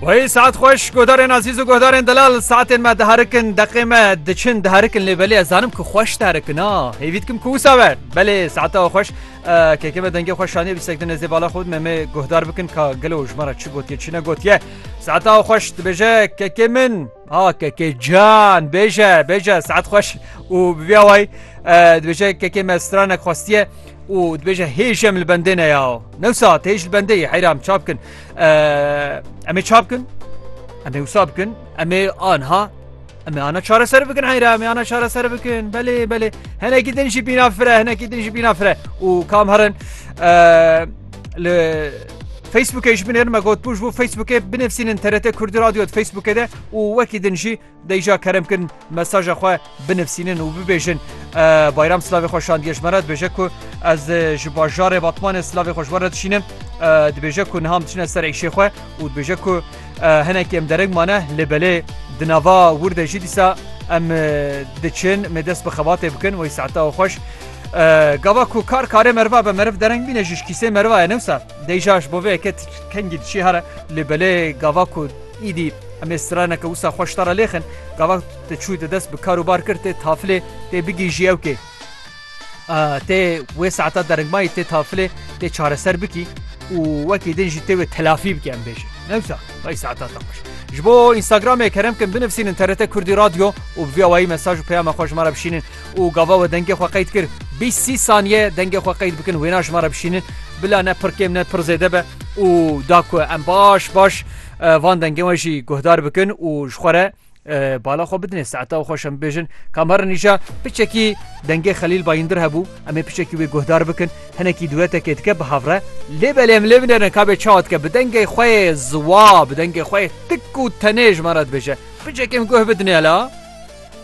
Wayê saet xweş godarên azîz û godarên delal saetên me diharikin deqê me diçin diharikin lê belê ez zanim ku xweş diharikin a hêvî dikim ku wisa ver belê saeta xweş kekê me dengê xweş şaniye bîstek di nêzê bala xwe me me guhdar bikin ka gelo ji me re çi gotiye çi ne gotiye saeta xweş dibêje kekê min Ah kekê can bêje bêje saet xweş û bi vî awayî dibêje kekê me stranek xwestiye û dibêje hêj em li bendê ne ya new saet hêj li bendê yê heyra em çap bikin em ê çap bikin em ê wisa bikin em ê anha em ê ana çareser bikin heyra em ê ana çareser bikin belê belê henekî din jî bîna fire henekî din jî bîna fire û kam herin Li Facebookê ji binêr me got pûj bû Facebookê binivsînin TRT Kurdî Radyo di Facebookê de û wekî din jî deyja kerem kirin mesaja xwe binivsînin û bibêjin bayram silavê xwe şandiye ji me re dibêje ku ez ji bajarê Batmanê silavê xwe ji we re dişînim dibêje ku niham diçine ser êşê xwe û dibêje ku Hinek em dereng mane lê belê di nava wir de jî dîsa em diçin me dest bi xebatê bikin wey saeta û xweş. Gava ku kar karê meriva be meriv dereng bîne jî kîsê meriva ye newsa deyja ji bo vê yeke kengî diçî here lê belê gava ku îdî em ê straneke wisa xweş tara lêxin gava te çû te dest bi kar û bar kir tê tafilê tê bigîjî ewkê. Tê wê saeta deringmayî tê tafilê tê çareser bikî û wekî din jî tê wê telafî bikî em bêjin. Newsa vay saeta te xweş. Ji bo Instagramê kerem kin binivîsînin TRT Kurdî Radyo û bi vî awayî mesaj û peyama xwe ji me re bişînin û gava we dengê xwe qeyd kir bîst sî saniye dengê xwe qeyd bikin wêna ji me re bişînin bila ne pir kêm ne pir zêde be û da ku em baş baş van dengê we jî guhdar bikin û ji xwe re Bala xwe bidinê saeta û xweş em bêjin kam herin nîşa piçekî dengê xelîl bayindir hebû em ê piçekî wê guhdar bikin hinekî duetekê dike bi havre lê belê em lê binêrin kabê çawa dike bi dengê xwe ziwa bi dengê xwe tik û tenê ji me re dibêje piçekê em guh bidinê la